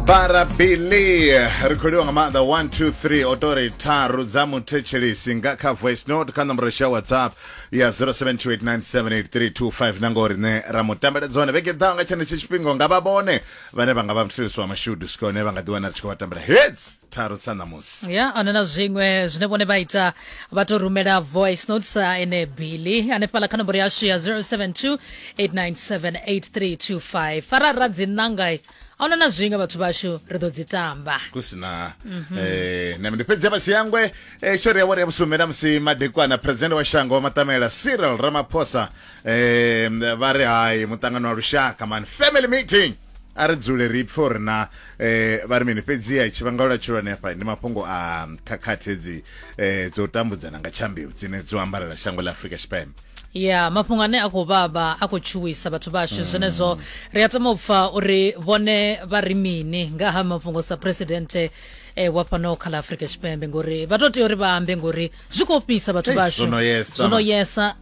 barabili ri khou liwa nga maanḓa 123 o to ri tharu dza muthetshelesi nga kha voice note kha nomboro ya whatsapp ya 0728978325 na ngori ne ra mu tambela dzone vhege ḓaho nga tshenetshi tshifhingo nga vha vhone vhane vha nga vha mthulisi wa mashudu swika hone vha nga ḓiwana ri tshi khou vha tambela hedzi tharu sa ṋamusi ya ana na zwiṅwe zwine vhone vha ita vha to rumela voice note sa ene billy hanefhala kha nomboro yashu ya 0728978325 farara dzinanga a huna na zwinga vhathu vhashu ri ḓo dzi tamba kusina eh na ndi fhedzi fhasi yangwe eh shori ya wari ya vhusumi na musi madekwana president wa shango wa matamela Cyril Ramaphosa eh vha ri hai mutangano wa lushaka man family meeting a ri dzule ri pfhe uri na eh vha ri mini fhedzi ya tshivhangalo tshilwane hafha ndi mafhungo a khakhathi hedzi eh dzo tambudzana nga tshambiwa dzine dzo ambarela shango ḽa Afrika Tshipembe ya mafhungo ane a khou vhavha a khou tshuwisa vhathu vhashu mm. zwenezwo ri a tama u pfa uri vhone vha ri mini nga ha mafhungo sa presidente eh, wa fhano kha ḽa afrika tshipembe ngori vha to tea uri vha ambe ngori zwi khou fhisa vhathu vhashu zwo no yesa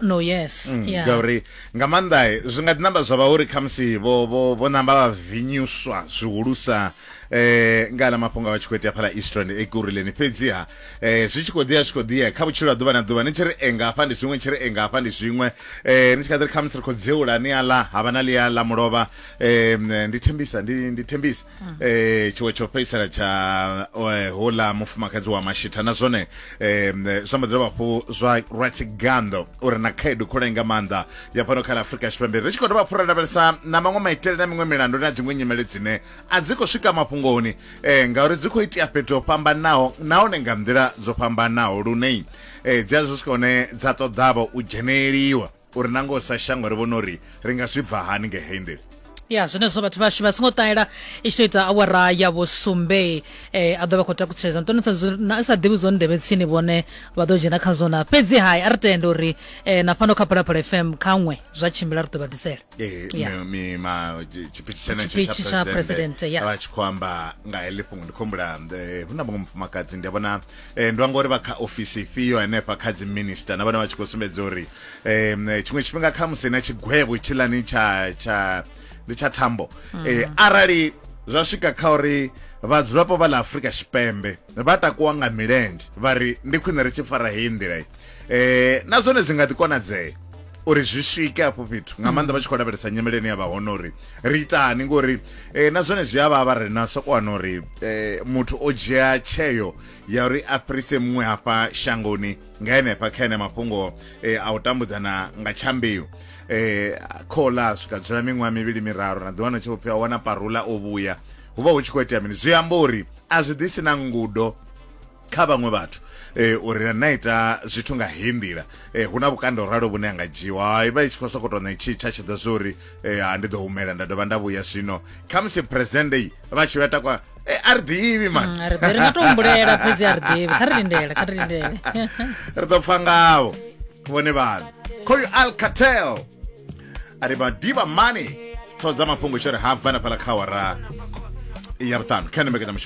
no yes mm, ngauri nga maanḓa zwi nga ḓi namba zwa vha uri khamusi vho namba vha vinyuswa zwihulusa eh nga na mafhungo a vha tshi khou itea phala east rand ekurileni fhedziha eh zwi tshi khou ḓiya zwi khou ḓiya kha vhutshilo ha ḓuvha na ḓuvha ni tshi ri enga hafha ndi zwiṅwe ni tshi ri enga hafha ndi zwiṅwe eh ni tshi kha ḓi ri khamusi ri khou dzeula ni aḽa ha vha na ḽia ḽa mulovha eh ndi thembisa ndi ndi thembisa eh tshiwe tsho fheisela tsha eh, hola mufumakadzi wa mashitha na zwone eh zwa mbo ḓi dovha hafhu zwa rwa tshigando uri na khaedu khulwane nga maanḓa ya fhano kha ḽa afurika tshipembe ri tshi khou dovha hafhu ra lavhelesa na maṅwe maitele na miṅwe milandu na dziṅwe nyimele dzine a dzi khou swika mafhungoni eh, ngauri dzi khou itea fhethu ho fhambanaho nahone nga nḓila dzo fhambanaho lune eh, dzi a zwi swika hone dza ṱoḓavho u dzheneleliwa uri na ngoho sa shango ri vhone uri ri nga zwi bva hani nga heyi nḓila ya zwenezwo vhathu vhashu vha songo ṱahela i tshi to ita awara ya vhusumbe eh, a ḓo vha khou takutsheleza ntoni na sa ḓivhi zwo ndevhe tsini vhone vha ḓo dzhena kha zwona fhedzi hai a ri tende uri eh, na fhano kha phalaphala fm khaṅwe zwa tshimbila ri ḓo vha ḓisela Eh, Yeah. mi- mi- ma- chi- tshipichi tshenetsho Tshipichi tsha tsha president, president, eh, yeah. vha tshi khou amba nga heḽi fhungo ndi khou humbula eh, hu na muṅwe mufumakadzi ndi a vhona eh, ndi wanga uri vha kha ofisi ifhio henefha kha dzi minister na vhona vha tshi khou sumbedza uri eh, eh, tshiṅwe tshifhinga kha musi na tshigwevho tshilani tsha tsha ndi tsha thambo eh, arali zwa swika kha uri vhadzulapo vha ḽa afurika tshipembe vha takuwa nga milenzhe vha ri ndi khwine ri tshi fara heyi nḓila eh na zwone zwi nga ḓi konadzea uri zwi swike afho fhethu nga maanḓa vha tshi khou lavhelesa nyemeleni ya vha hone uri ri itani ngori eh, na zwone zwi a vha vha ri na soko wana uri eh, muthu o dzhia tsheo ya uri a fhirise muṅwe hafha shangoni nga henefha kha ene mafhungo eh, a u tambudzana nga tshambeyo eh, khola swika dzula miṅwaha mivhili miraru na ḓiwana tshi vhopfhi a wana parula o vhuya hu vha hu tshi khou itea mini zwi amba uri a zwi ḓisi na ngudo kha vhaṅwe vhathu eh, uri na ita zwithu nga hei nḓila eh, hu na vhukando ralo vhune a nga dzhiwa i vha i tshi khou sokoto na itshi tsha tshi ḓo zwo uri eh, a ndi ḓo humela nda dovha nda vhuya zwino kha musi presende i vha tshi vha takwa eh, a ri ḓivhi mani Mm, a ri ḓivhi, ri nga tou humbulela fhedzi a ri ḓivhi kha ri lindele kha ri lindele ri ḓo pfa ngavho vhone vhana khoyu alcatel a ri madiba mani ṱhoho dza mafhungo tsho ri ha bva na fhaḽa kha awara ya vhuṱanu kha ene mbekanyamushumo